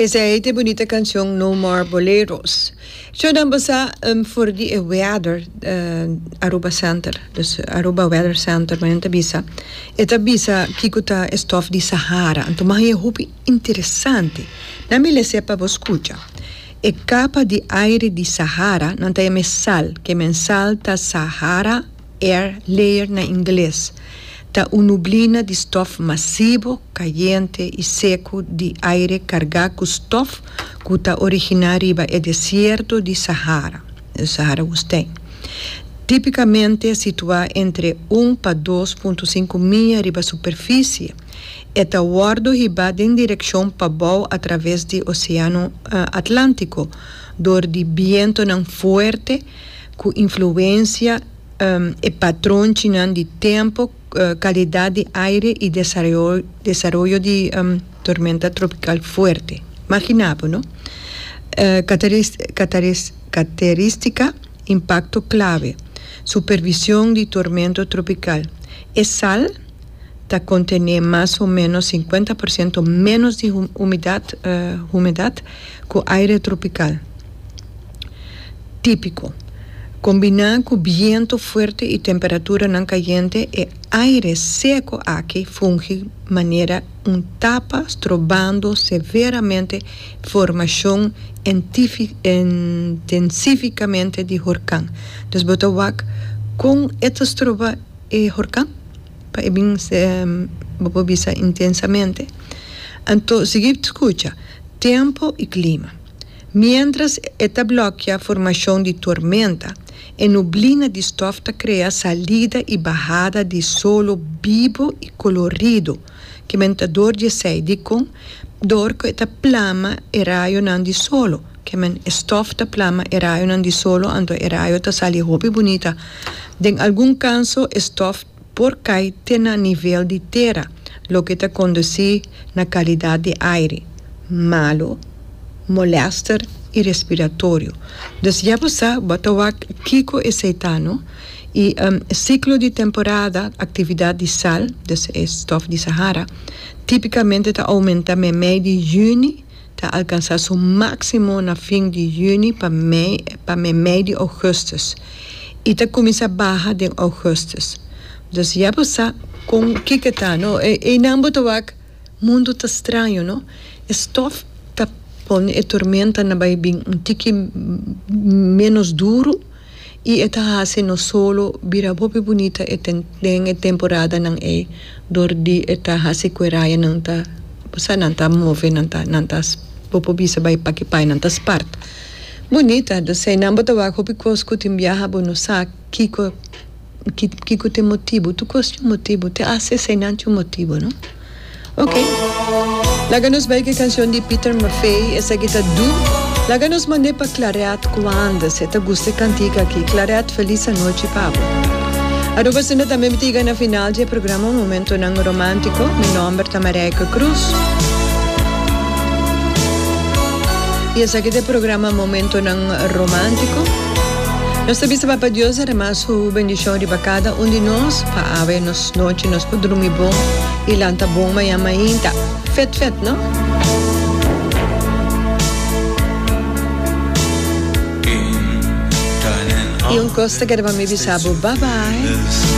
Esei ta e bunita cancion No More Boleros. Ciudadano bo sa for di e weather Aruba center, dus Aruba weather center nan ta bisa, e ta bisa kico ta e stof di Sahara, anto mas bien hopi interesante. Nan mi lese pa bo scucha. E capa di aire di Sahara nan ta e mesal, ke mesal ta Sahara. Er leer na ingles ta un nublina di stof masibo, cayente y seco di aire carga cu stof cu ta origina riba e desierto di Sahara, e Sahara Woestijn, tipicamente situa entre un pa dos punto sinku mia riba superficie. E ta wordo hiba den direccion pabou atraves di Oceano Atlantico dor di bientonan fuerte, ku influensia e patronchinan di tempu, kalidat di aire i desaroyo di tormenta tropikal fuerte. Maginá bo no. Kateristika, impakto klave, supervision di tormento tropikal, e sal ta kontené mas o ménos sinkuenta por siento ménos di humidat, humedat, ku aire tropikal. típiko. Kombiná ku bientu fuerte i temperaturanan kayente, e aire seko aki fungi manera un tapa strobando severamente formashon intensífikamente di horkan. Dus bo ta wak kon e ta stroba e horkan? Pa e bin bo por bisa intensamente. Anto, sigui skucha, Tempo i klima. Miéntras e ta blòkia formashon di tormenta, e nublina di stòf ta krea salida i bahada di solo bibu i koloridu ku mentador di esei dikon dor ku e ta plama e rayonan di solo ku men e stòf ta plama e rayonan di solo anto e rayo ta sali hopi bunita den algun kanso e stòf por kai te na nivel di tera, loke ta kondusí na kalidat di aire malu, molèster i respiratorio. Dus ya bo sa, bo ta wak kiko esei ta no. I siklo di temporada aktividat di sal, dus e stòf di Sahara, típikamente ta oumentá meimei di yüni ta alkansá su máksimo na fin di yüni pa pa mei di ougùstùs i ta kuminsá baha den ougùstùs. Dus ya bo sa kon ki ke ta no e einan bo ta wak mundu ta straño no e stòf ta pone e tormenta na bai bin un tiki ménos duru. I e ta hasi no solo bira hopi bunita den e temporadanan ei dor di e ta hasi ku e rayanan ta sa nan ta move, nan ta nan ta bo por bisa bai pa ki pai nan ta spart bunita. Esei nan bo ta wak hopi kos ku tin biaha bo no sa kiko. ki kico t'e motibo, tur cos tin un motibo, te hace esey nan tin un motibo no. Ok, laga nos bay cu e cancion di Pieter Maffay, esaki ta Do, laga nos mand'e pa Claret Coande, si e ta gusta e cantica aki, Claret feliz anochi pa bo. Aruba Zender tambe mi ta yega na final di e programa Momentonan Romantico, mi nomber ta Marijke Croes, y esaki ta e programa Momentonan Romantico. Nos ta bisa Papa Dios derrama su bendishon riba kada un di nos pa awe nos nochi nos por drumi bon i lanta bon mañan mainta. Fet fet, no? I un kos ta kere pa mi bisa bo bye bye.